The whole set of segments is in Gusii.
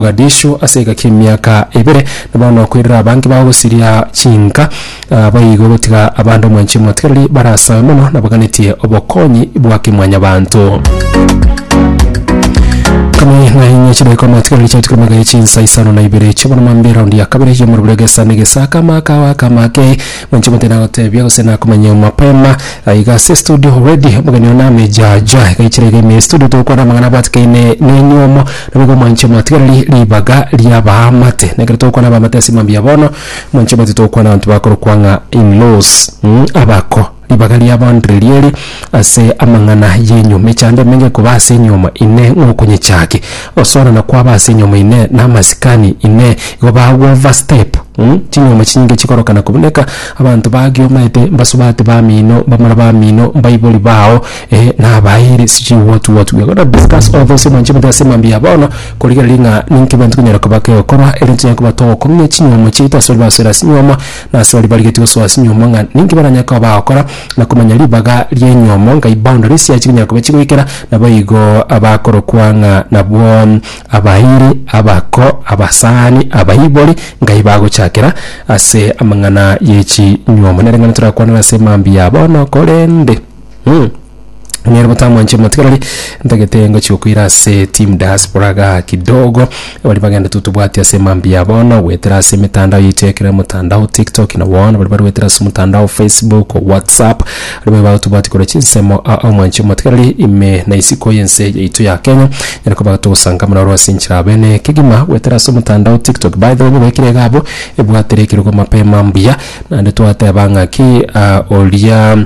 Mogadishu ase egaki emiaka ebere, na bono koirora abange bao gosiria chinka ah, baigo gotiga abande omwanchi omotigareri barasabe mono nabaganetie obokonyi bwa kemwanyabanto. Kame ng'a inye chidaika omotigareri chiatukire mega ye chinsa isano na ibere chiobono mambia eraundi ya kabere y'omorobura egesa na egesaka amaka ao akama ake Mwanche omonto nagotebia gose nakomanya mapema eh, iga ase studio already omogeni one amejaja iga ichire iga ime studio togokwana amang'ana abwatikaine nenywe omo nabo igo mwanche omatigereri ribaga riabaamate na ekero togokwana abaamate ase mambia bono mwanche omanyete togokwana abanto bakorokwa ng'a in-laws mm, abako ribaga riabaondereri eri ase amang'ana yenywe mechando emenge koba ase enyoma ine ng'okonyechakia Gosoorana kwabo ase enyomo ime na amasikani ime igo bagoverstep chinyomo chinyinge chikorokana kobuneka, abanto bagiomaete, mbasubati bamino, mbamura bamino, mbaibori bao, eh, na abairi, sijui what what. We are gonna discuss all those emanche emanche ase mambia ya bono, korigereria ng'a ninki ebinto binyare koba kegokorwa erinde tonyare koba togokong'ia chinyomo chiaito ase baria basoera ase enyomo, na ase baria barigetie gosoa ase enyomo ng'a ninki baranyare koba bagokora, na komanya ribaga ri'enyomo ngai boundary sia chibinyara koba chigoikera naboigo abakorokwa ng'a nabwo abairi abako abasani abaibori ngai bagochakera ase amang'ana yechinywomo nereng'ana torakwanera ase mambia bono korende mm. Nere botamwanchire buna tiga rori ntagete ngochia gokoira ase team diaspora igaa kidogo, baria bagenda tu tobwati ase mambia bono, goetera ase emetandao yaito ekero motandao tiktok na bono baria baruetere ase omotandao facebook, whatsapp, aria babe bagotobwati korwa chinsemo aa omwanchire buna tiga rori ime na isiko y'ense yaito ya Kenya, nyare koba togosangamana ororo ase enchera abe na ekegima goetera ase omotandao tiktok. By the way nyobekeire iga abwo ebwatire ekerogo mapema mbuya naende twateba ng'aki oria.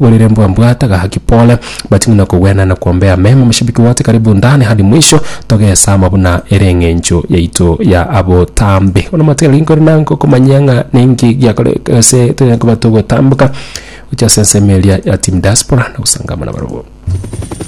Borere mbwambwate gaki pole, but ng'ina kogwena na kuombea mema moshabiki wote karibu ndani hadi mwisho togesama buna ere eng'encho yaito ya abotambe. Bono matiga gaki nkore na ngokomanyia ng'a ninki giakore gose tonya koba togotamboka gochia ase ensemo eria ya team diaspora na gosangama nabarabwo.